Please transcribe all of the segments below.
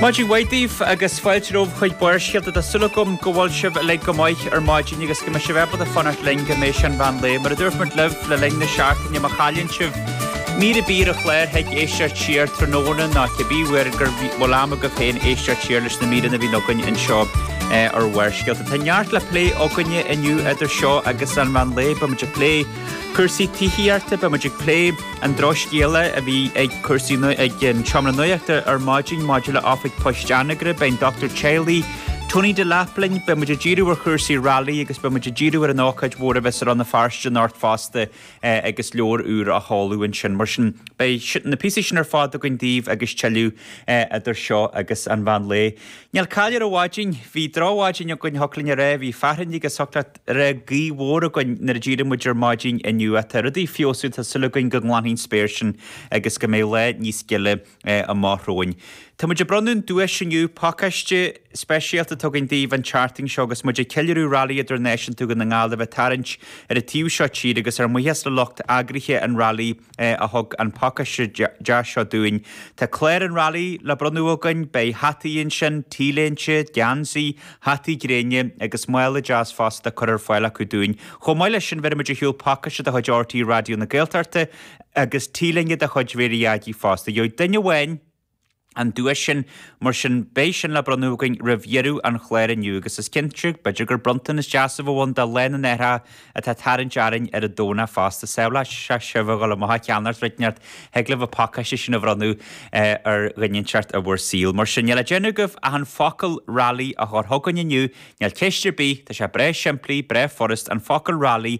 Maidin mhaith daoibh agus fáilte romhaibh chuig Barrscéalta. Tá súil agam go bhfuil sibh uilig go maith ar maidin agus go mbeidh sibh ábalta fanacht linn go mbeidh sé an meán lae. Mar a dúirt muid libh le linn na seachtaine má chailleann sibh mír ar bith ar an chlár thig libh éisteacht siar tráthnóna nó cibé uair go bhfuil am agaibh féin éisteacht siar leis na míreanna a bhíonn againn anseo ar Bharrscéalta. Tá neart le plé againne inniu idir seo agus an mheán lae. Beimid ag plé cúrsaí tithíochta, beimid ag plé. an drochscéala a bhí ag Cúrsaí ag an Seomra Nuaíochta ar maidin maidir le Oifig Poist Anagaire. Beidh an dochtúir teaghlaigh, Tony Delap linn, beidh muid ag díriú ar chúrsaí railí agus beidh muid ag díriú ar an ócáid mhór a bheas i Rann na Feirste anocht fosta agus leabhar úr á sheoladh ansin. Mar sin, beidh na píosaí sin ar fad againn daoibh agus tuilleadh idir seo agus an mheán lae. Níl caill ar an mhaidin. Bhí drochmhaidin againn, thiocfadh linn a rá, bhí fearthainn agus thiocfadh leat a rá, raibh gaoth mhór againn nuair a d'éirigh muid ar maidin inniu a. Tá rudaí ag feabhsú, tá súil againn go nglanfaidh an spéir sin agus go mbeidh lá níos gile amach romhainn. Tá muid ag bronnadh an duais inniu, pacáiste speisialta atá againn daoibh an tseachtain seo agus muid ag ceiliúradh Railí Idirnáisiúnta Dhún na nGall a bheith ag tarraingt ar an taobh seo tíre agus ár mbuíochas le lucht eagraithe an railí a thug an pacáiste deas seo dúinn. Tá clár an railí le bronnadh againn, beidh hataí ansin, t-léinte, geansaí, hataí gréine agus mála deas fosta curtha ar fáil acu dúinn. Chomh maith leis sin, bheirfimid ar shiúl pacáiste de chuid RTÉ Raidió na Gaeltachta agus t-léine de chuid Mary Aggie fosta. Gheobhaidh duine amháin. an duais sin. Mar sin, beidh sin le bronnadh againn roimh dheireadh an chláir inniu agus is cinnte, b'fheidir gur bronntanas deas a bheadh ann do Lá na nAithreacha atá ag tarraingt orainn ar an Domhnach fosta. Sábhálfaidh sé sibh a dhul amach a cheannacht rud inteacht, thig libh an pacáiste sin a bhronnadh ar dhuine inteacht i bhur saol. Mar sin, níl le déanamh agaibh ach an focal railí a chur chugainn inniu, níl ceist ar bith, tá sé breá simplí, breá furast, an focal railí,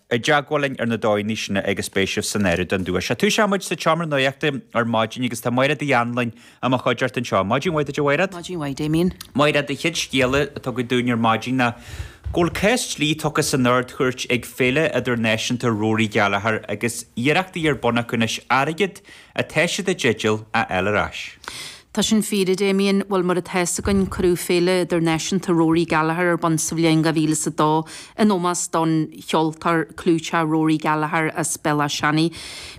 i dteagmháil linn ar na dóigheanna sin agus beidh sibh san áireamh don duais. Sea, tosaíonn muid sa tSeomra Nuaíochta ar maidin agus tá Maighréad Uí Annluain i mo chuideachta anseo. Maidin mhaith duit, a Mhaighréad. Maidin mhaith, Damien. Maighréad, an chéad scéala a tugadh dúinn ar maidin ná go bhfuil ceist dlí tugtha san Ard-Chúirt ag Féile Idirnáisiúnta Rory Gallagher agus iarrachtaí ar bun acu anois airgead atá siad i dteideal a fháil ar ais. Tá sin fíor, a Damian. Bhuel, mar atá fhios againn, cuireadh Féile Idirnáisiúnta Rory Gallagher ar bun sa bhliain 2002 in ómós don cheoltóir clúiteach Rory Gallagher as Béal Átha Seanaidh.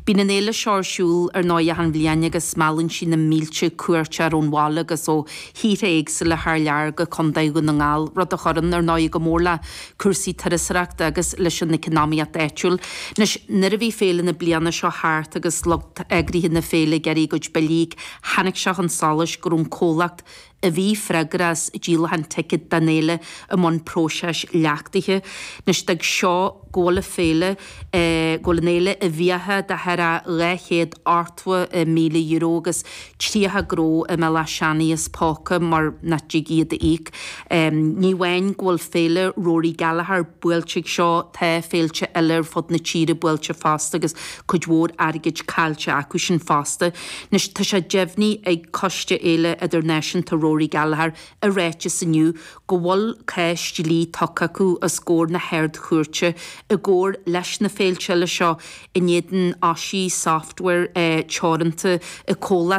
Bíonn an fhéile seo ar siúl ar ndóigh achan bhliain agus meallann sí na mílte cuairteoir ón bhaile agus ó thíortha éagsúla thar lear go Contae Dhún na nGall, rud a chuireann, ar ndóigh, go mór le. cúrsaí turasóireachta agus leis an economíocht áitiúil. Anois, nuair a bhí féile na bliana seo thart agus lucht eagraithe na féile ag iarraidh a gcuid billí, tháinig sé chun solais go raibh an comhlacht a bhí freagrach as díolachán ticéad don fhéile i mbun próiseas leachtaithe. Anois, d'fhág seo go bhfuil an féile. go bhfuil an fhéile i bhfiacha de chorradh le dhá chéad ochtó míle euro agus tríocha gnó i mBéal Átha Seanaidh as póca mar nach dtig iad a íoc. Ní amháin go bhfuil Féile Rory Gallagher buailte ag seo, tá féilte eile ar fud na tíre buailte fosta agus cuid mhór airgid caillte acu sin fosta. Anois, tá sé deimhnithe ag Coiste Fhéile Idirnáisiúnta Rory Gallagher i ráiteas inniu go bhfuil cás dlí tugtha acu os gcomhair na hArd-Chúirte i gcomhar leis na féilte eile seo in éadan Oshi Software Teoranta i